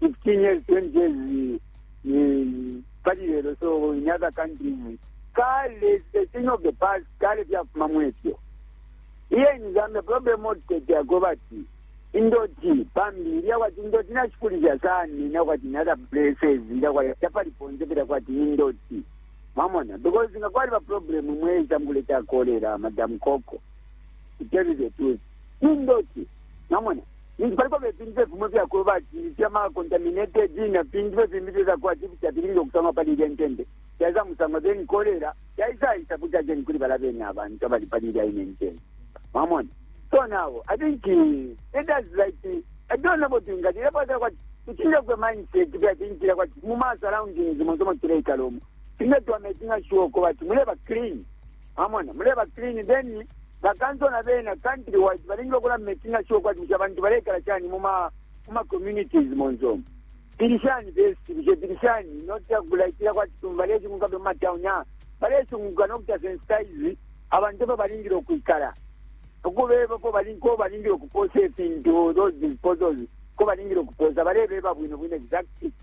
15 years 20 years ni pali lelo so in other countries kale the thing of the past kale byafuma mwefyo iye in zambia problem otutetyako bati indoti pambi ilya kwati indoti nashikulisha sani ina kwati in other places ilya kwati tapali ponse pela kwati indoti mwamona because nga kwali baproblem mweisa mukuleta kolera madam coco to tell you the truth indoti mwamona ninshi paliko fye ifintu fye fimo ifyakweba ati ifyamacontaminated na fintu fye fimbi fye fyakuba ati kuti afilingile ukusamwa pali ilya intende fyaisa musamwa then kolera yaisaisa kuti ajeni kuli bala bene abantu abali pali ilya ine intende mwamona so now i think eh, it is like eh, i don't know about inga lile pasa kwati tuchile kwe mindset kya tinjira kwati mu ma surroundings mu zomo tuleikala omu tinga twame tinga shuo ko bati muleba clean Mwamona, muleba clean, then bakanso na bena country wise balingile ukula making sure kwati busha abantu balekala chani mu ma mu ma communities monzo. Bilishani best, bushe bilishani not ya kulaitira kwati tumbale chunguka be ma town ya. Bale chunguka no kuta sensitize abantu ba balingile ukuikala. Ukubeba ko balingo balingile ukupose fintu those disposals ko balingile ukuposa balebeba bwino bwino exactly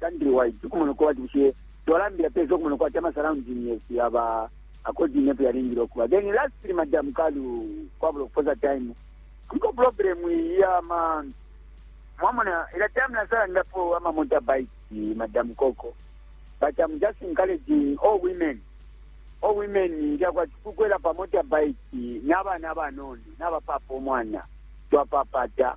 countrywide ukumona uko bati bushe twalambila pesa ukumona uko ati amasurrounding yesu yaba according nepo yalingile ukuba then lastly madam kalu kwabula ukuposa time kuliko problem yama mwamona ila time nasalandapo ama motorbike madam koko but i'm just encouraging all women all women lyakwati kukwela pa motorbike n'abana abanono n'abapapa omwana twapapata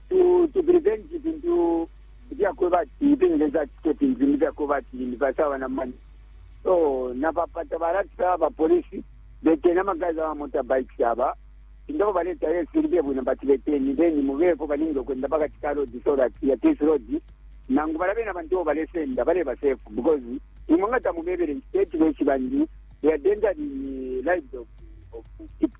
to to prevent ifintu ifyakweba ati ipengeza atike fintu fimbi fyakweba ati limbi basawa na mani so napapata balatisa bapolisi betena amagazi aba motorbikes aba indabo baleta yesiribye bwino bati beteni then mubeko balingi okwenda pakati ka road so that ya this road nangu balabe na bantu bo balesenda baleba safe because imwe nga tamubebere state beshi bandi they are danger the lives of, of people